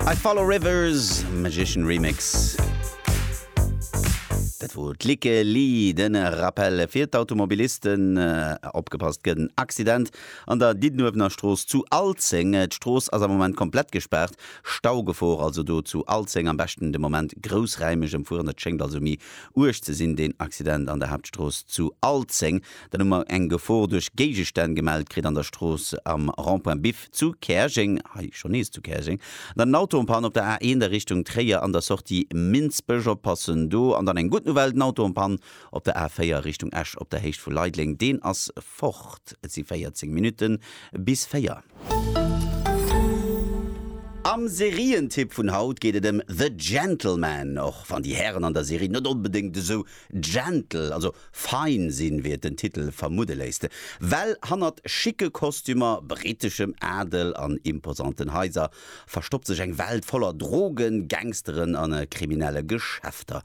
I follow rivers, Magician Remix. Dat wor d'Likke Li. Den Rappel fir d'Automobilisten, opgepasst, gëtt en Accident an der Diddenuewener Strooss zu Alzeng. D'Strooss ass am Moment komplett gespaart. Staugefor also do zu Alzeng. Am beschten de Moment groussräimeg emfueren. Et schéngt also méi uerg ze sinn deen Accident an der Haaptstrooss zu Alzeng. Dann hu mer eng Gefor duerch Géigestänn gemellt kritt an der Strooss am Rond-point Biff. zu Käerjeng, hei scho nees zu Käerjeng, an dann en Auto en Panne op der A1 a Richtung Tréier an der Sortie Minsbech, oppassen do, an dann eng gutt Nouvelle, den Auto en Panne op der A4 a Richtung Esch op der Héicht vu Leideleng, deen ass fort. Et si 14 Minutte bis 4. Am Serientipp vun haut geet et ëm The Gentleman, och wann déi Hären an der Serie net onbedéngt esou Gentle, also fein sinn, wéi et den Titel vermudde léisst. Well hannert schicke Kostümer, briteschem Adel an imposanten Haiser verstoppt sech eng Welt voller Drogen, Gangsteren a kriminelle Geschäfter.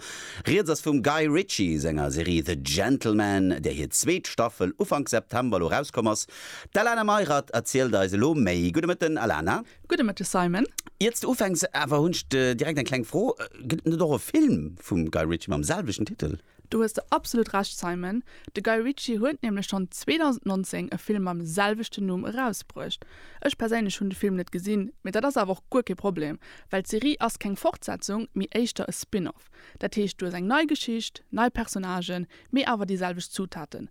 Rieds ass vum Guy Ritchie senger Serie The Gentlemen, där hir zweet Staffel Ufank September elo rauskomm ass. D'Alana Meirath erzielt eis elo méi. Gudde Mëtten, Alana. Gudde Mëtteg Simon. Ier s de ufänks awer hunn ech direkt eng kleng Fro, Gëtt et net och e Film vum Guy Ritchie mam selwechten Titel? Do hues de absolut Recht Simon, de Guy Ritchie huet nämlech schonn 2019 e Film mam selwechten Numm erausbruecht. Ech perséinlech hunn de Film net gesinn, mee dat ass awer och guer kee Problem, well d'Serie ass keng Fortsetzung, mee éischter e Spin-off. Dat heescht, du hues eng nei Geschicht, nei Personnagen, mee awer déi selwecht Zutaten,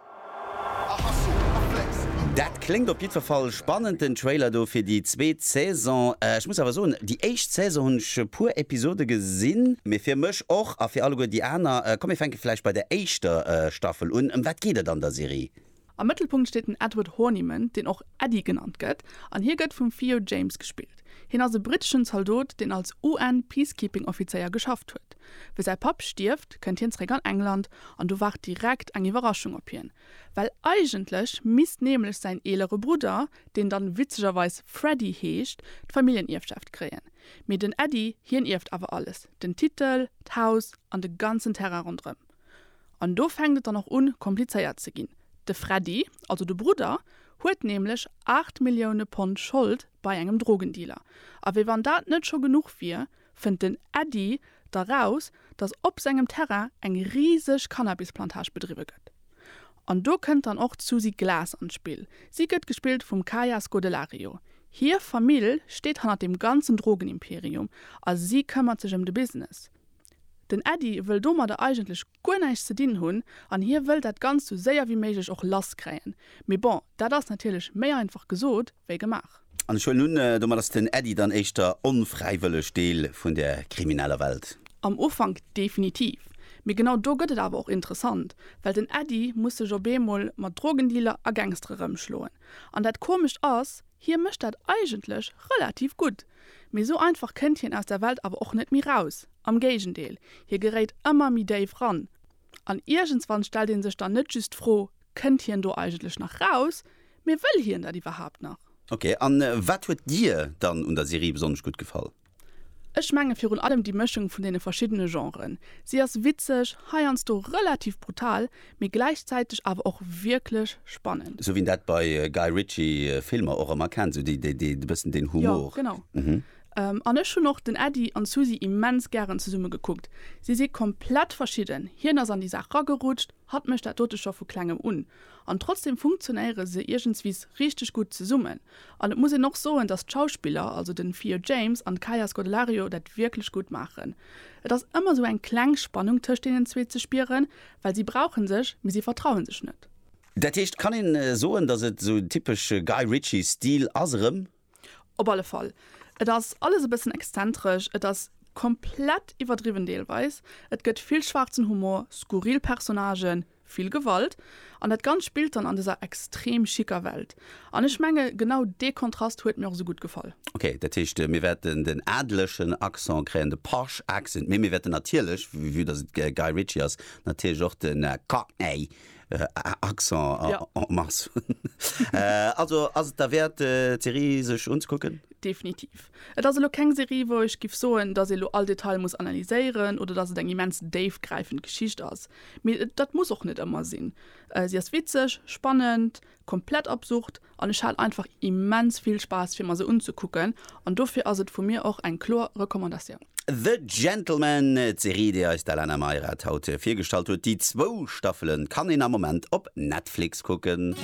Dat kléngt op jiddwer Fall spannend, den Trailer do fir déi zweet Saison. Ech muss awer soen, déi éischt Saison hunn ech e puer Episode gesinn. Mee fir mech och, a fir alleguer déi aner, komm mir fänke vläicht bei der éischter Staffel un. Ëm wat geet et an der Serie? Am Mëttelpunkt steet den Edward Horniman, deen och Eddie genannt gëtt, an hie gëtt vum Theo James gespillt. Hien ass e britteschen Zaldot, deen als UN-Peacekeeping-Offizéier geschafft huet. Wéi säi Papp stierft, kënnt hien zeréck an England an do waart direkt eng Iwwerraschung op hien. Well eigentlech misst nämlech säin eelere Brudder, deen dann witzegerweis Freddy heescht, d'Familljenierfschaft kréien. Mee den Eddy, hien ierft awer alles, den Titel, d'Haus an de ganzen Terrain ronderëm. An do fänkt et dann och un komplizéiert ze ginn. De Freddy, also de Brudder, huet nämlech 8 Millioune Pond Schold bei engem Drogendealer. A wéi wann dat net scho genuch wier, fënnt den Äddi da raus, datt op sengem Terrain eng riseg Cannabisplantage bedriwwe gëtt. An do kënnt dann och d'Susi Glas an d'Spill. Si gëtt gespillt vum Kaya Scodelario. Hir Famill steet hannert dem ganzen Drogenimperium a si këmmert sech ëm de Business. Den Äddi wëll domadder eigentlech guer näischt ze dinn hunn an hie wëll dat Ganzt sou séier wéi méiglech och lass kréien. Mee bon, dat ass natierlech méi einfach gesot wéi gemaach. An ech huelen un, domat ass den Äddi dann éischter onfräiwëlleg Deel vun der krimineller Welt. Am Ufank definitiv. Mee genau do gëtt et awer och interessant, well den Äddi muss sech op eemol mat Drogendealer a Gangstere rëmschloen. An dat Komescht ass, hie mécht dat eigentlech relativ gutt. Mee sou einfach kënnt hien aus der Welt awer och net méi raus, am Géigendeel, hie geréit ëmmer méi déif ran. An iergendswann stellt een sech dann net just d'Fro, Kënnt hien do eigentlech nach raus? Mee wëll hien dat iwwerhaapt nach? Ok, a wat huet dir dann un der Serie besonnesch gutt gefall? Ech menge virun allem déi Mëschung vun deene verschiddene Genren. Si ass witzeg, heiansdo relativ brutal, mee gläichzäiteg awer och wierklech spannend. Sou wéi een dat bei Guy Ritchie Filmer och ëmmer kennt, sou déi déi e bëssen deen Humor. Jo, genau. An ech hunn och den Äddi an d'Susi immens gären zesumme gekuckt. Si si komplett verschidden, hien ass an déi Saach ragerutscht, hatt mécht dat dote scho vu klengem un. An trotzdeem funktionéiere se iergendswis richteg gutt zesummen. An et muss een och soen, datt d'Schauspiller, also den Theo James an d'Kaia Scodelario dat wierklech gutt maachen. Et ass ëmmer sou eng kleng Spannung tëscht deenen zwee ze spieren, Well si brauchen sech, mee si vertrauen sech net. Dat heescht, kann een soen, dass et esou typesche Guy Ritchie Stil ass erëm? Op alle Fall. Et ass alles e bëssen exzentresch, et ass komplett iwwerdriwwen deelweis, et gëtt vill schwaarzen Humor, skurril Personnagen, vill Gewalt an dat Ganzt spillt dann an dëser extrem schicker Welt. An ech menge genau dee Kontrast huet mir och esou gutt gefall. Ok, dat heescht mir wäerten den adlechen Accent kréien, de posh accent, mee mir wäerten natierlech, vue dass et Guy Ritchie ass, natierlech och de cockney Accent en masse hunn. Also ass et derwäert d'Serie sech unzekucken? Definitiv. Et ass elo keng Serie wou ech giff soen, dass ee lo all Detail muss analyséieren oder dass et eng immens déifgräifend Geschicht ass, mee dat muss och net ëmmer sinn. Si ass witzeg, spannend, Komplett absurd an ech hat einfach immens vill Spaass fir mer se unzekucken an dofir ass et vu mir och eng kloer Recommandatioun. The Gentlemen, d'Serie déi eis d'Alana Meirath haut virgestallt huet. Déi zwou Staffelen kann een am Moment op Netflix kucken.